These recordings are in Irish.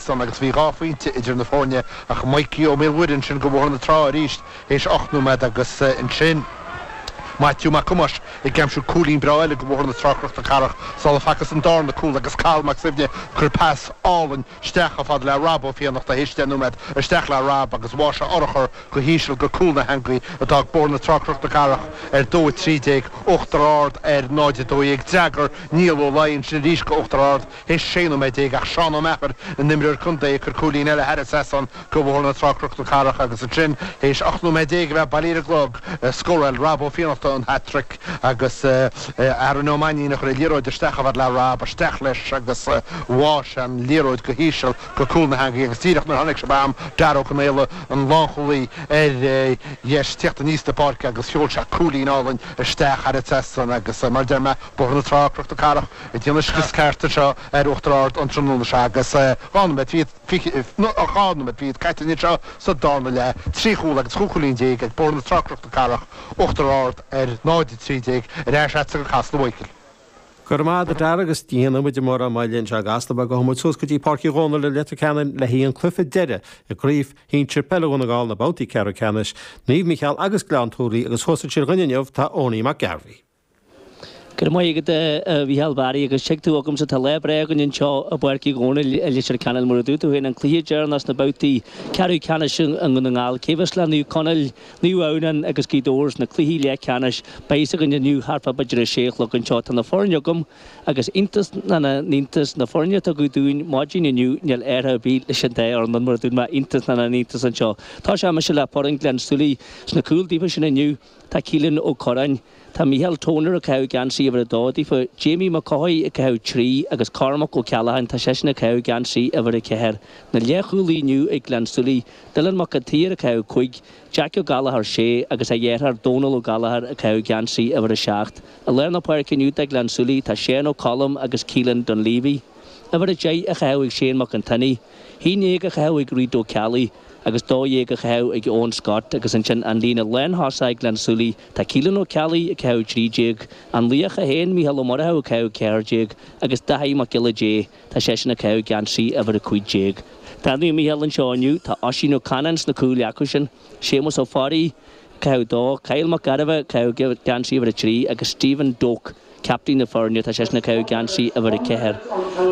san agus bhí dhá phointe idir na foirne ach Maidhcí Ó Maolmhuaidh ansin go Bhóthar na Trá arís théis ocht nóiméad agus ansin Maitiú Mac Thomáis ag aimsiú cúilín breá eile go Bhóthar na Trá Cnoc na Cathrach sula facthas an darna cúl agus Cathal Mac Suibhne a chuir pas álainn isteach chomh fada le Rob Ó Fiannachta théis deich nóiméad isteach le Rob agus bháigh sé urchar go híseal go cúl na heangaí a d'fhág Bóthar na Trá Cnoc na Cathrach ar dó 13, Uachtar Ard ar 0, 12. D'fhreagair Niall Ó Laoi ansin arís go Uachtar Ard. Théis sé nóiméad déag ach Seán Ó Meachair, a n-imreoir contae, ag cur cúilín eile thar an trasnán go Bhóthar na Trá, Cnoc na Cathrach agus ansin, théis ocht nóiméad déag a bheith bailithe ar an gclog, scórail Rob Ó Fiannachta an hat-trick agus Aaron Ó Mainnín a chuir an liathróid isteach chomh fada le Rob. Isteach leis agus bháigh sé an liathróid go híseal go cúl na heangaí agus díreach nuair a tháinig sibh agam Darragh Ó Conaola, an lánchúlaí, ar deis, ag tíocht aníos na páirce agus sheol sé cúilín álainn isteach thar an trasnán agus mar a deir mé, Bóthar na Trá, Cnoc na Cathrach. Déanamh scrios ceart anseo ar Uachtar Ard an tráthnóna seo agus tá muid dhá nóiméad fichead caite anseo sa darna leath, trí chúl agus chúig chúilín déag ag Bóthar na Trá Cnoc na Cathrach, Uachtar Ard ar 0-13, ar ais agatsa go Casla a Mhaidhcil. Go raibh maith agat a Dara agus ní dhéanfaidh muid mórán moille anseo i gCasla mar gabhfaidh muid suas go dtí Páirc Uí Dhónaill i Leitir Ceanainn le haghaidh an cluiche deireadh i gcraobh shinsir peile Dhún na nGall na babhtaí ceathrú ceannais Naomh Micheál agus Gleann tSúilí agus thuas ansin dúinn inniu tá Eoiní Mac Gairbheith. Go raibh maith agat a Mhícheál Bharry agus tig tú agamsa tá lá breá againn anseo i bPáirc Uí Dhomhnaill i Leitir Ceanainn mar a dúirt tú féin an cluiche deireannach sna babhtaí ceathrú ceannais i nDún na nGall cé a bheas le Naomh Conaill, Naomh Adhamhnáin agus Gaoth Dobhair sna cluichí leath ceannais beidh a fhios againn inniu thart fá b'fhéidir a sé a chlog anseo tá na foirne agam agus iontas na n-iontas na foirne a tugadh dúinn maidin inniu níl athrú ar bith ins an dá fhoireann mar a dúirt mé iontas na n-iontas anseo tosóidh mise le foireann Ghleann tSúilí sna cúil daofa sin inniu Tá Keelan Ó Corráin, tá Micheál Toner ag caitheamh geansaí uimhir a dó daofa, Jamie Mac Cothaigh ag caitheamh trí agus Cormac Ó Ceallacháin tá seisean ag caitheamh geansaí uimhir a ceathair. Na leathchúlaithe inniu ag Gleann tSúilí, Dylan Mac an tSaoir ag caitheamh cúig, Jeaic Ó Gallachóir sé agus a dheartháir Dónal Ó Gallachóir ag caitheamh geansaí uimhir a seacht. I lár na páirce inniu do Ghleann tSúilí tá Séan Ó Colm agus Keelan Dunleavy. Uimhir a deich á chaitheamh ag Séan Mac an tSionnaigh. haon déag á chaitheamh ag Reid Ó Ceallaigh agus dó dhéag á chaitheamh ag Eoin Scott agus ansin an líne lántosaigh ag Gleann tSúilí tá Keelan Ó Ceallaigh ag caitheamh trí déag, an laoch é féin, Micheál Ó Murchú ag caitheamh ceathair déag agus Daithí Mac Giolla Dé tá seisean ag caitheamh geansaí uimhir a cúig déag. Do Naomh Micheál anseo inniu, tá Oisín Ó Canainn sna cúil acu sin, Séamus Ó Fearraigh ag caitheamh dó, Kyle Mac Gairbheith ag caitheamh geansaí uimhir a trí agus Stephen Doak, Captaen na Foirne, tá seisean ag caitheamh geansaí, uimhir a ceathair.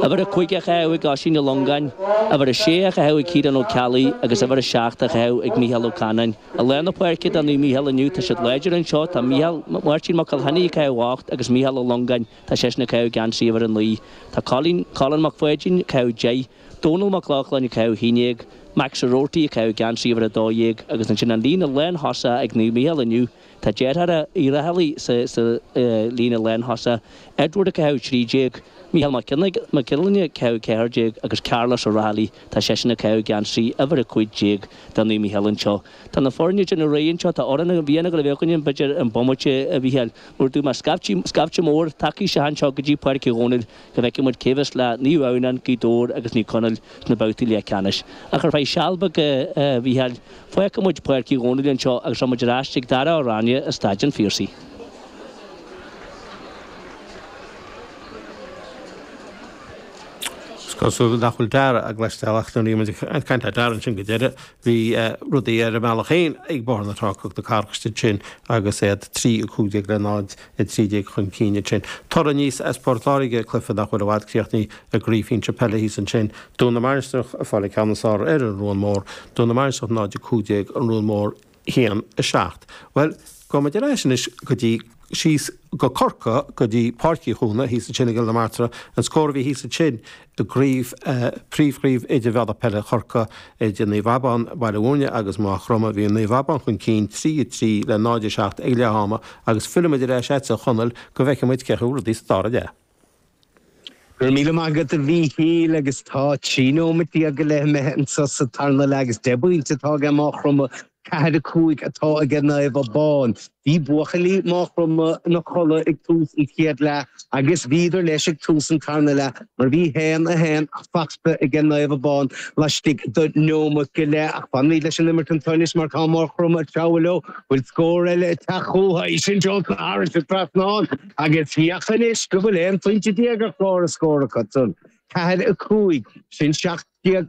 Uimhir a cúig á chaitheamh ag Oisín Ó Longáin, uimhir a sé á chaitheamh ag Ciarán Ó Ceallaigh agus uimhir a seacht á chaitheamh ag Micheál Ó Canáin. I lár na páirce do Naomh Micheál inniu, tá siad láidir anseo, tá Micheál, Máirtín Mac Giolla Chainnigh ag caitheamh a hocht agus Micheál Ó Longáin, tá seisean ag caitheamh geansaí, uimhir a naoi. Tá Colin, Colin Mac Pháidín, ag caitheamh deich, Dónal Mac Lochlainn ag caitheamh a haon déag, Max Ó Robhartaigh ag caitheamh geansaí uimhir a dó dhéag agus ansin an líne lántosach ag Naomh Micheál inniu, Tá deartháireacha Uí Raghallaigh sa líne lántosach, Edward ag caitheamh 13, Micheál Mac Giollarnáth ag caitheamh 14 agus Carlos Ó Raghallaigh tá seisean ag caitheamh geansaí uimhir 15 do Naomh Micheál anseo. Tá na foirne ag déanamh réidh anseo, tá Amhrán na bhFiann ag gabháil a bheith againn b'fhéidir an bomaite a Mhicheáil mar a dúirt mé scaifte mór tagtha isteach anseo go dtí Páirc Uí Dhomhnaill, go bhfeicfidh muid cé bheas le Naomh Adhamhnán, Gaoth Dobhair agus Naomh Conall sna babhtaí leathcheannais. Ach ar feadh seal beag, a Mhícheáil, fágfaidh muid Páirc Uí Dhomhnaill anseo agus rachaidh muid ar ais chuig Dara Ó Ráinne i Staid an Phiarsaigh. Is cosúil nach bhfuil Dara ár gcloisteáil ach nuair a bhí muid ag caint le Dara ansin go deireadh, Bhí rudaí ar a mbealach féin ag Bóthar na Trá-Cnoc na Cathrach ansin agus iad trí 15 le 0-13 chun cinn ansin. Toradh aníos as Port Láirge, cluiche nach bhfuil i bhfad críochnaithe i gcraobh Shinsir Peile thíos ansin. Dún na Mainistreach ag fáil an ceann is fearr ar an Ruán Mór. Dún na Mainistreach 0-15 An Ruán Mór 1-7. Bhuel, gabhfaidh muid ar ais anois go dtí. síos go Corcaigh go dtí Páirc Uí Chuana thíos ansin i gCill na Martra, an scór a bhí thíos ansin i gcraobh, príomhchraobh idirmheánach peile Chorcaí idir Naomh Abán, Baile Mhúirne agus Maigh Chromtha, bhí Naomh Abán chun cinn 3, 3 le 0, 7 ag leath ama agus fillfimid ar ais ortsa a Chonaill go bhfeicfidh muid cén chaoi a bhfuil rudaí sa dara leath. Go raibh míle maith agat a Mhíchíl agus tá trí nóimeat déag go leith imithe anso sa tarna leath agus deich bpointe atá aige Máchromtha, ceathair a cúig atá aige Naomh Abán. Bhí buachaillí Máchromtha ina chodladh ag tús an chéad leath agus bhíodar leis ag tús an tarna leath mar bhí haon a haon fachta aige Naomh Abán laistigh do neomat go leith ach fanfaimíd leis an imirt anso anois mar tá Máchromtha ag treabhadh leo. Bhfuil scór eile ag teacht chuchu? Is é sin Johnson, Harris is Breathnán. Agus féach anois go bhfuil aon phointe déag ar chlár an scóir acusan. Ceathair a cúig, sin seacht déag